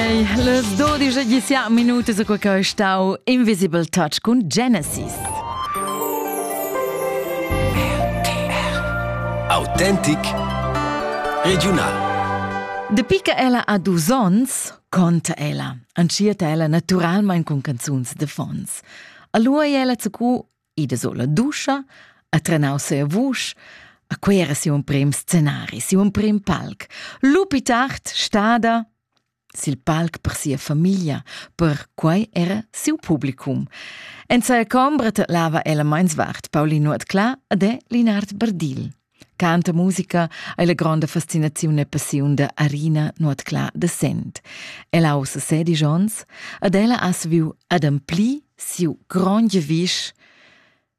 Hey, les 12 sia minuti su quei che stau Invisible Touch con Genesis. Autentic Regional. Dapi che ella ha dus ons, conta ella. Anchia ella naturalmente con canzuns de fons. Allora è ella zu ida sur la duscha, ha trenau sia vusch, a quei era siu emprim scenari, siu emprim palc. Lupi tard stada sil palc per sia famiglia, per quei era siu publicum. En sia combra tetlava ella meins vart Paulin Nuot Cla ed è Linard Berdil. Canta musica ei la gronda fascinaziun e passiun da Arina Nuotclà de Sent. Ella ha ussa sedisch onns ed ella ha saviu ademplir siu grond giavisch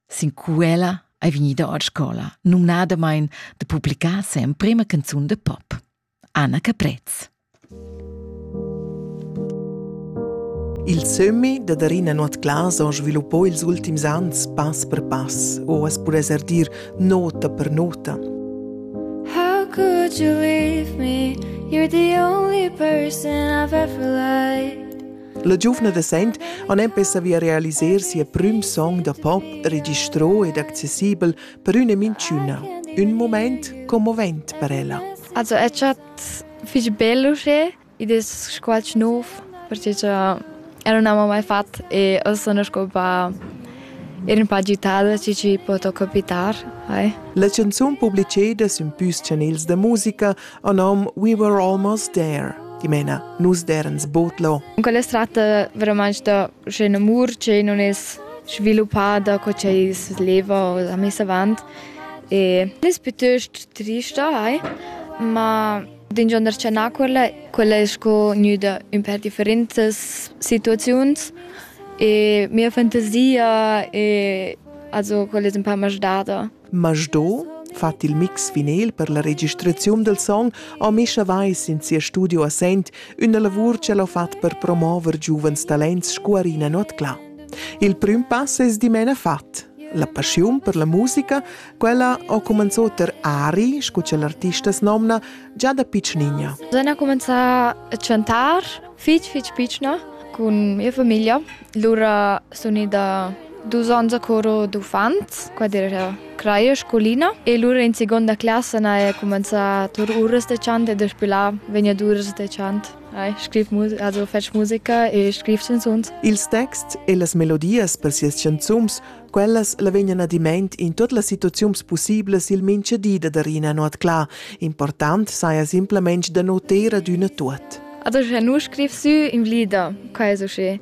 sin quella ei vegnida ord scola, numnadamein de publicar semprema canzun de pop. Anna Caprez. Il sömmi da Darina Nuotclas ha sviluppà ils ultims ans pass per pass, o as pudess er dir nota per nota. How could you leave me? You're the only person I've ever liked. La giuvna da Sent ha empè savia realiser sia prüm song da pop registrò ed accessibel per üna minchüna, ün mumaint commovent per ella. Also è chat fich bello che id es qualch nov perché cha ero non avevo mai fatto e ho sono scopa ero un po' agitada ci ci poto capitare hai. La canzun publiceda sün püs chanels da musica a nom We Were Almost There dimena nus derens botlo. Quella è tratta veramente da Sche in'amur che nun es sviluppada co ch'ei leva o ha miss avant, es pütöst trista hai, ma d'ingionder cha na quella, quella es sco gnüda ün pêr differentas situaziuns e mia fantasia, also quella es ün pa masdada. Masdo fat il mix vinil per la registraziun del song ha Mischa Weiss in sia studio a Sent üna lavur che l'ho fat per promover giuvens talents sco Arina Nuotclà. Il prüm pass es dimena fat. La passiun per la musica, quella ho cumanzò ter Ari, scu cha l'artista s'nomna, già da piccinigna. Sen ha cumenzà a chantar fich fich pichna cun mia famiglia Lura sun ida dus ons a coro d'uffants, qua era craia e scolina e lura in seconda classa n'haja cumenzà tur uras da chant e daspö là vegnan uras da chant. Hai scriv also fetsch musica e scriv chanzuns. Ils texts e las melodias per sias chanzuns Quellas la vegnan adimaint in tuot las situaziuns pussiblas il mincha di da dar ina not cla. Important saja simplamaing da noter ad üna tuot. Adesso nu scriv sü in vlida, questo sche.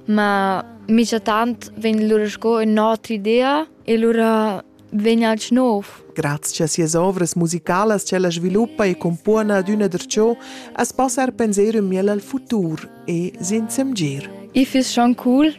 Ma mica tant vegn lura sco un'altra idea e lura vegn al nov. Grazie a sias ovras musicalas che la sviluppa e compona ad una der ciò, as possa er pensare miel al futur e sin semgir. Ich find's schon cool,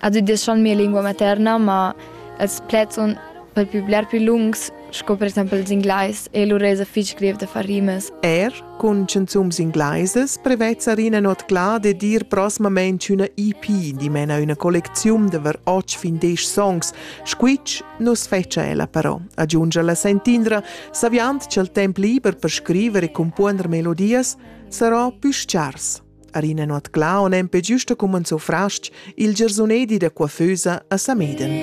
Ad udeschan mia lingua materna, ma els pleds sun per pü bler pü lungs sco per exaimpel ils Inglais e lur esa fich greiv da far rimas. Er cun chanzuns inglaisas prevezza Rina Notclà dad ir prosmamainch üna EP, dimena üna collecziun da var otg fin desch songs. Squitsch nu's fetscha ella però, aggiungia la sentindra, saviand cha'l temp liber per scriver e cumpuonder melodias sarà pü schars. Arina Nuotclà on empe giusto cumanzo frastg il giarsunedi da coiffeusa a Sameden.